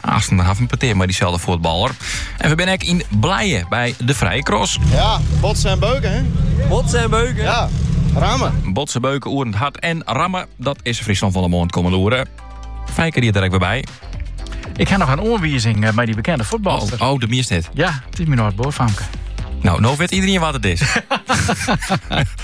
Aansten dan ha we in petear mei dyselde fuotballer. En we binne ek yn Blije by de Vrije Cross. Ja, botsen en beuken, hè? Botsen en beuken? Ja, rammen. Botsen, beuken, oerend hard en rammen, dat is Fryslân fan 'e Moarn kommende oeren. Feike is der ek wer by. Ik ha noch in oanwizing eh, by dy bekende fuotballer. Oh, oh, de meest dit. Ja, it is myn âld-buorfamke. No, no wit iderien wa't it is.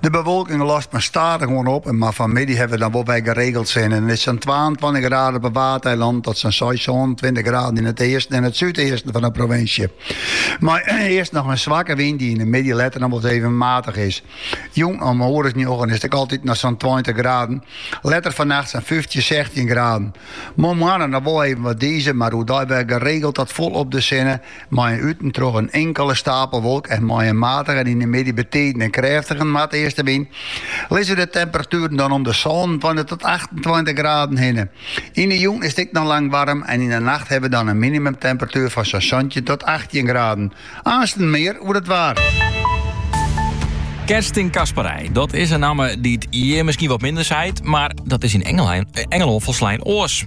De bewolking lost mar stadichoan op en mar fan 'e middei hawwe we dan wol wer geregeld sinne. It is sa'n twaentweintich graden op 'e Waadeilannen tot sa'n seis-sânentweintich graden yn it easten en it súdeasten fan de provinsje. Mei earst noch in swakke wyn dy't yn de middei letter dan wolris even matich is. Jûn om in oere as njoggen is it ek altyd noch sa'n tweintich graden, letter fannacht sa'n fyftjin, sechstjin graden. Moarnmoarn noch wol even wat dize, mar oerdei wer geregeld tot folop de sinne Mei in út en troch in inkele stapelwolk en mei in matige en yn de middei betiden in krêftige noardeastewyn lizze de temperatueren dan om de sânentweintich tot achtentweintich graden hinne. Yn de jûn is it ek noch lang waarm en yn de nacht hawwe we dan in minimumtemperatuer fan sa'n santjin tot achttjin graden. Aansten mear oer it waar. Kerstin Casparij, dat is in namme dy't hjir miskien wat minder seit, mar dat is yn Engelân folslein oars.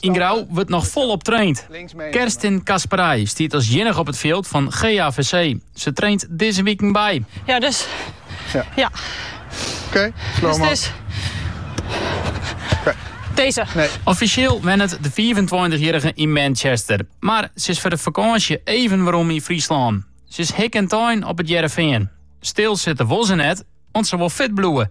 Yn Grou wurdt noch folop traind. Kerstin Casparij stiet as iennige op it fjild fan GAVC. Se traint dizze wiken by. Ja, dus. Ja. ja. Oké, dus het is... Deze. Nee. Offisjeel wennet de 25-jierrige yn Manchester. Mar se is foar de fakânsje even werom yn Fryslân. Se is hikke en tein op it Hearrenfean. Stil sitte wol se net, want se wol fit bliuwe.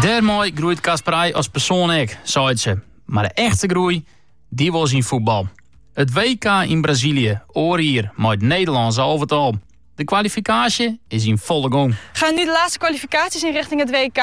Dêrmei groeit Casparij as persoan ek, seit se. Mar de echte groei, die wol se yn fuotbal. It WK yn Brazilië, oar jier mei it Nederlânske alvetal. De kwalifikaasje is yn folle gong. Gaan nu de laatste kwalificaties in richting het WK?